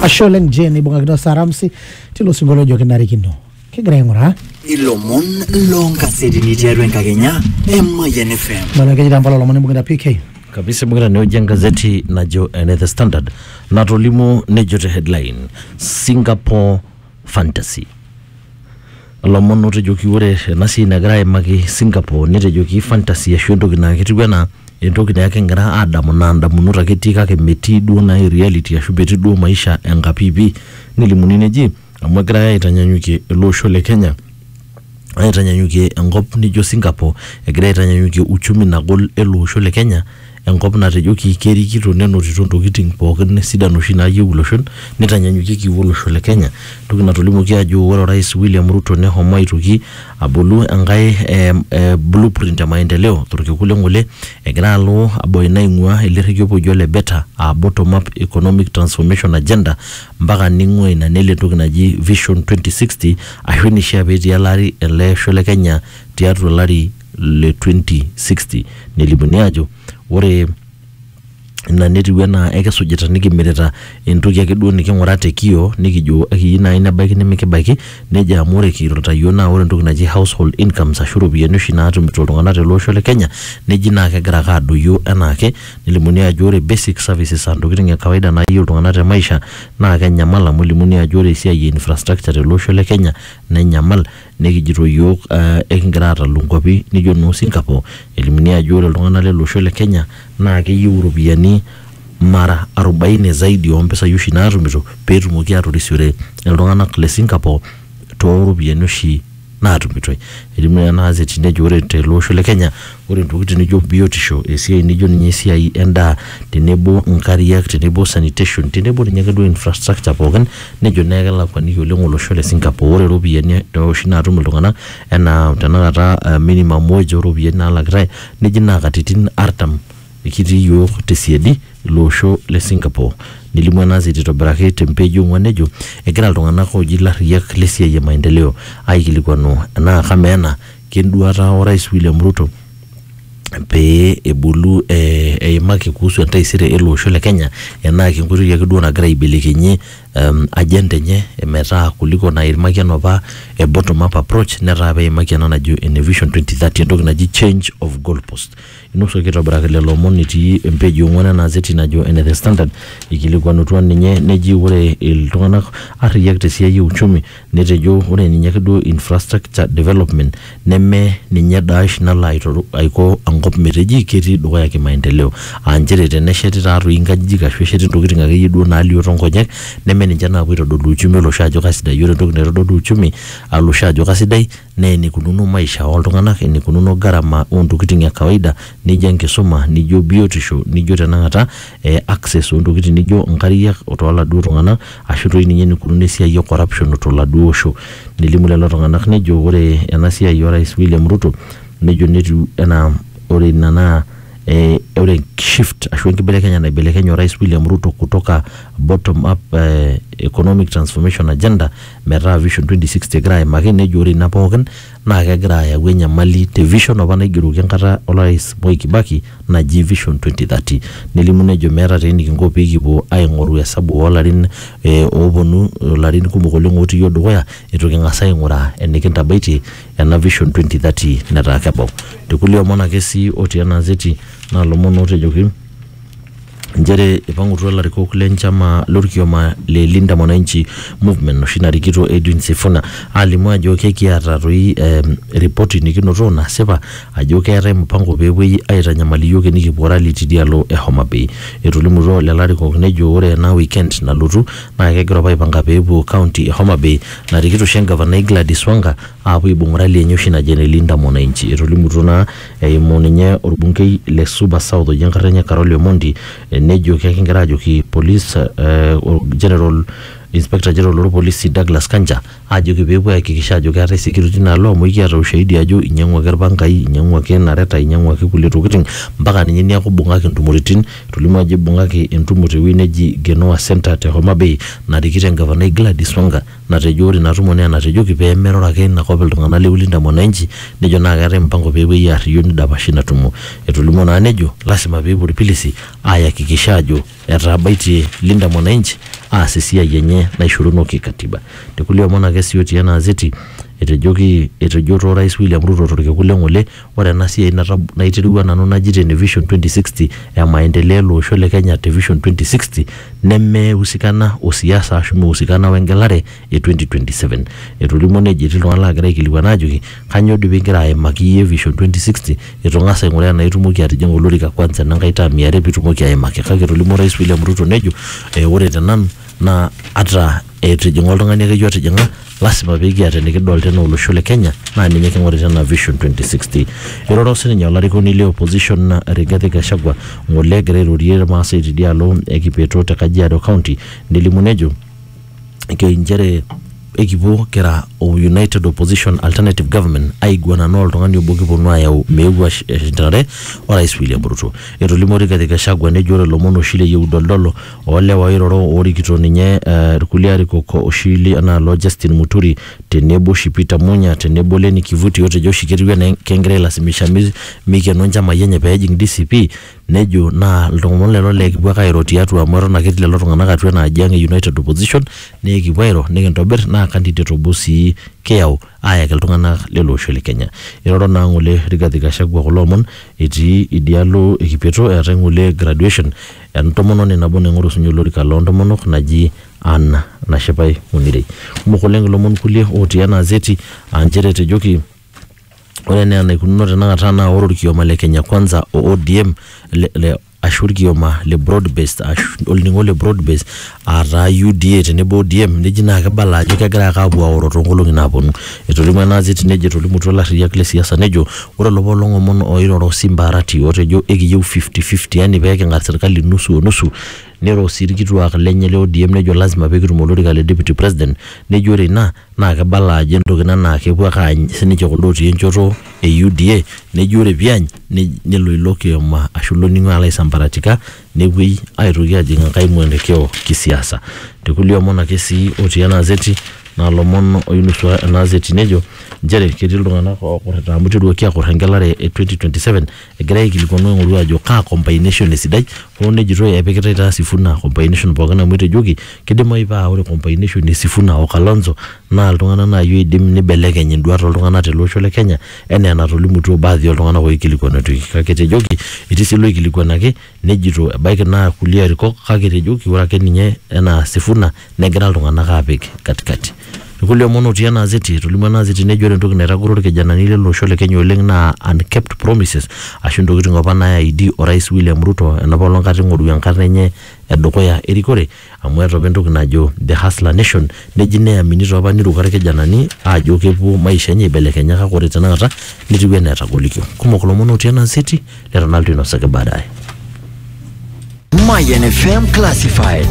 ashe oleng jeni ibung'akino saramsi tilo sinkolio ojo kinarikino kigira aing'uraa ilomon loonkasetini tiatua enkakenya emayian fm nalo keji tampala olomon imbung'ita pk kabisa ibung'ita neoji engazeti najo ene the standard natolimuo nejo te headline singapore fantasy. Lomon otejoki ore ena siai nagira aimaki Singapore netejoki fantasy ashu entoki naa ketiu enaa entoki naa ekingira aadamu naa ndamunot ake etii kake metii duo naai reality ashu metii duo maisha enkapiipi. Nelimuni neji amu egirai aitanyanyukie ele osho le Kenya aitanyanyukie enkop nijo Singapore, egirai aitanyanyukie uchumi nagol ele osho le Kenya. enkop natejoki kerikito nenotito ntokitin pookin sidan oshi naayieu iloshon neitanyanyukieki olosho le Kenya entoki natolimuoki ajo ore orais William Ruto nehomo aitoki abolu enkae eh, eh, blueprint e maendeleo torkekun le ng'ole egira alo abaya ina aing'ua ele rrekie opa oji ole beta aa bottom up economic transformation agenda mpaka neing'ua ina nelo entoki naji vision 2060 ashu eneishia petii ele ari ele osho le Kenya tiatua olari le 2060 nelimuni ajo ore ina netiu enaa ekisujita nikimirita entoki ake duo niking'ura te kio nikijo ekiyieu naaji nebaiki nimikibaiki nejo amu ore kirorita yiok naa ore entoki naji household incomes ashu iropiyiani oshi naatumito iltung'anak tele osho le kenya neji naa kegira ake adoyio enaake nelimuni ajo ore basic services antokiting e kawaida nayieu iltung'anak te maisha naa kenyamal amu elimuni ajo ore esiai e infrastructure tele osho le kenya nenyamal Nekijito iyiook ekingira aatalu nkuapi nijo noo Singapore elimunia ajo ore iltung'ana lele osho le Kenya naa keyieu iropiyiani mara arobaine zaidi oo mpisai oshi naatumito pee etumoki aatorisiore iltung'ana le Singapore too ropiyiani oshi naatumitoi. Elimu ena gazeti nejo ore tele osho le Kenya, Ore ntokitin nijo biotisho, esiai nijo ninye esiai endaa tenebo nkariak tenebo sanitation tenebo ninye ake duo infrastructure pookin nejo naa kelakuaniki oleng olosho le Singapore. Ore iropiyiani oshi naatum iltung'anak enaa tenakata minimum wage oo ropiyiani naalakitai neji naa katitin artam kitii iyiok te siadi ilo osho le Singapore. Nelimu ena gazeti aitobiraki te page e ong'wan nejo egira iltung'anak ooji ilarriyiak le siai e maendeleo aikilikuanu enaa kamaa ena Kenduata Orais William Ruto pee ebulu eh, eimaki kuhusu entaisere ele osho le Kenya enaa kenkoitoi ake duo nagira aibelekenyie um, agenda enye metaa kuliko naimaki enapa e bottom up approach netaa peimaki ena najo ene vision 2030 entoki naji change of goalpost. Inosuaki aitobiraki lelo omon etii empeji e ong'uan ena azeti najo ene the standard ikilikuanutua ninye neji ore iltung'anak arriyiak tesiai e uchumi Netejo ore ninye ake duo infrastructure development neme ninye daash nalo aitoru aiko enkop meteji ketii dukuya kimaendeleo. Aa nchere tenesheti taa toi nkajijik ashu esheti ntokitin ake yie duo naalio too nkonyek neme ninche naapuo aitodolu uchumi olosho ajo kaisidai. Ore entoki naitodolu uchumi olosho ajo kaisidai naa enikununo maisha ooltung'anak, enikununo gharama oontokitin e kawaida nijo enkisuma, nijo biotisho, nijo tenakata eh, access oontokitin nijo nkariak tooladuo tung'anak ashu toi ninye enikununo esiai e corruption toladuo osho. Nelimu lelo tung'anak nejo ore ena siai o rais William Ruto nejo netiu enaa ore ina naa eh, ore shift ashu enkibelekenyata naibelekenye o rais William Ruto kutoka bottom up eh, economic transformation agenda metaa Vision 2060 egira aimaki nejo ore ina pookin naa kegira ayau enyamali te vision apa naigeroki enkata orais Moi Kibaki naji Vision 2030. Nelimu nejo meeta taa enikinko pikipuo aing'oru esabu oolarin eh, ooponu ilarin kumok oleng otii iyiook dukuya itu king'as aing'uraa enikintabaitie ena Vision 2030 netaa kebau. Te kulie omon ake sii otii ena azeti naa ilomon ootejoki inchere eipang'utua ilarikok le nchama lorkioma le Linda Mwananchi Movement noshi narikito Edwin Sifuna alimu ajo kekiata toi em, ripoti nikinoto nasipa ajo keetae mpango peepuoi aitanyamal iyiook enikipuo rally tidialo e Homa Bay. Etolimutuo lelo arikok nejo ore ena weekend nalotu naa kegira apa aipanga peepuo county e Homa Bay narikito oshi engavanai Gladys Wanga aapuo aibung rally enye oshi naji ene Linda Mwananchi. Etolimutuo naa Eimu ninye olbunkei le Suba South oji enkarna enye Carole Omondi nejo kekingira ajoki police eh, general inspector general loo lpolisi Douglas Kanja ajoki peepuo ayakikisha ajo keetae security tina alo amu ekiata ushahidi ajo inyiang'uaki ilpangai, inyiang'uaki inareta, inyiang'uaki kulie tokitin mpaka ninye niaku ibung'aki intumoritin. Etolimuo ajo ibung'aki entumo tewuei neji Genoa Centre te Homa Bay narikito engavana Gladys Wanga. natejo ore ina tumo naa enatejoki pee meroro ake ina kop iltung'anak le Ulinda Mwananchi nejo naa keetae mpango pee epuoi aarriyio nidapashi ina tumo. Etolimuo naa nejo lasima pee epuo ilpilisi aayakikisha aajo etaabaitie Linda Mwananchi aas esiai enye naishoruno ki katiba. Te kulie omon ake sii otii ena azeti etejoki etejo to Orais William Ruto to lkekun le ng'ole Ore ena siai naiterua nanu naji te vision 2060 e maendeleo ele osho le Kenya te vision 2060 neme husikana o siasa ashu mihusikana we ngelare e 2027. Etolimuo nejo etii iltung'ana laagira aikilikuan aajoki kanyoo doi pigira aimaki iyie vision 2060 eitu ing'as aing'uraa enaa itumoki atijing'a olorika kwanza ena nkae term e are pitumoki aimaki. Kake etolimuo Orais William Ruto nejo ore te nanu naa ata eitu ijing'a oltung'ani akeyie otijing'a lasima pikiata enikidolta enaa olosho le kenya naa ninye king'orita enaa vision 2060 iroro sininye olarikoni le opposition Rigathi Gachagua ng'ole egira airorie irmaasai tidialo e kipeto te kajiado county nelimu nejo ke inchere ekipuo kira o united opposition alternative government aiguana naa oltung'ani obo kiponu ayau meeu ash- ashindanare orais William Ruto etolimuo Rigathi Gachagua nejo ore ilomon oshi le yieudol dolo o lewa oiroro oorikito ninye ilkulia arikok oshi li ena alo Justin Muturi tenebo oshi Peter Munya tenebo Lenny Kivuti otejo oshi ketiu enaa kengira ailasimisha meikeno inchamai enye pee ejing DCP nejo naa ilomon lelo lee kipuo ake airo tiatua amu eton ake etii lelo tung'anak atua ena aji ang e United Opposition naa ekipuo airo nikintobir naa candidate obo sii kiyau. aayaki iltung'anak lele osho le Kenya. Eiroro naa ng'ole Rigathi Gachagua kulo omon etii idialo e Kipeto eetae ng'ole graduation e ntomononi nabo naing'oru sinye olorika loo ntomonok naji Ann Nashipai Munirei. Kumok oleng ilomon kulie ootii ena azeti aa nchere etejoki ore enaa enaikununo tenakata naa ore olkioma le Kenya Kwanza o ODM le ashu olkioma le broad based ashu olning'o le broad based aa taa UDA tenebo ODM neji naa kibala ajo kegira ake aapuo aoro too nkolong'i naaponu. Etolimuo ena azit nejo etolimutuo ilarriyiak le siasa nejo ore olopa olong' omon ooiroro Simba Arati otejo ekiyieu fifty fifty yaani pee king'ar serkali nusu o nusu niro sii ilkituak lenye le ODM nejo lazima pee kitum olorika le deputy president nejo ore ina naa kibala ajo entoki ina naa kepuo ake aany sininche kuldo otii enchoto e UDA neji ore piany ne- nelo ilo kioma ashu ilo ning'o alo aisambaratika nepuoi aitoki ajing enkae mwelekeo kisiasa tekulie omon ake sii otii ena azeti naa ilomon oinusua ena azeti nejo nchere ketii iltung'anak okurrita amu iteruaki akurr engelare e 2027 Egirai aikilikuanu aing'oru ajo kaa combination esidai hoo nejitoi epikitai taa Sifuna combination pookin amu etejoki kidimayu paa ore combination e Sifuna o Kalonzo naa iltung'anak naai oidim nibelekeny induat oltung'anak tele osho le Kenya enaa enatolimutuo baadhi oltung'anak oikilikuanituoki kake etejoki etii sii iloikilikuanaki nejito ebaiki naa kulie arikok kake etejoki ore ake ninye enaa Sifuna negira iltung'anak aapik katikati. Irkulie omon otii ena azeti, etolimuo ena azeti nejo ore entoki naitagoro irkijanani lele osho le Kenya oleng naa unkept promises ashu intokitin opa naaidi orais William Ruto enopa olong kata ing'oru enkarna enye e dukuya e rikore amu eeta opa entoki najo the hustler nation neji neamini taa opa neiruko irkijanani aajo kepuo maisha enye aibelekenya kake ore tenakata netiu enaa etagolikio. Kumok ilomon otii ena azeti leton alotu ainosaki baadaye Mayan FM Classified.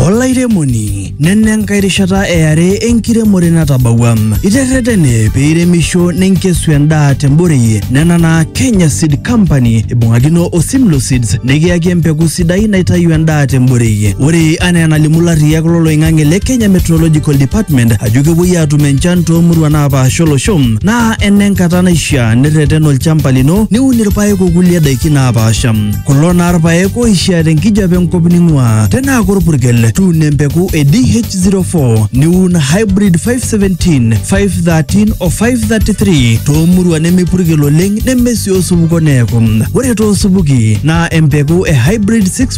olairemoni nena enkae rishata eare enkiremore natabawua iterretene pee iremisho ninkesu endaa temborei nena naa kenya seed company ibung'akino o simlo seeds nikiyaki empeku sidai naitayu endaa temborei ore anaa enalimu larriyak loloing'ang'e le kenya meteorological department ajo kepuoi aatum enchan toomuruan naapaasha olosho naa enenkata naishaa nirreten olchamba lino niun irpaek okulie daiki naapaasha kulo naa irpaek oishaa tenkijape enkop ning'uaa tenaa korpurkel tuuno empeku e DH04 niun hybrid 517 513 o 533 toomurua nemepurkel oleng nemesii osupuko neeku ore toosupuki naa empeku e hybrid 6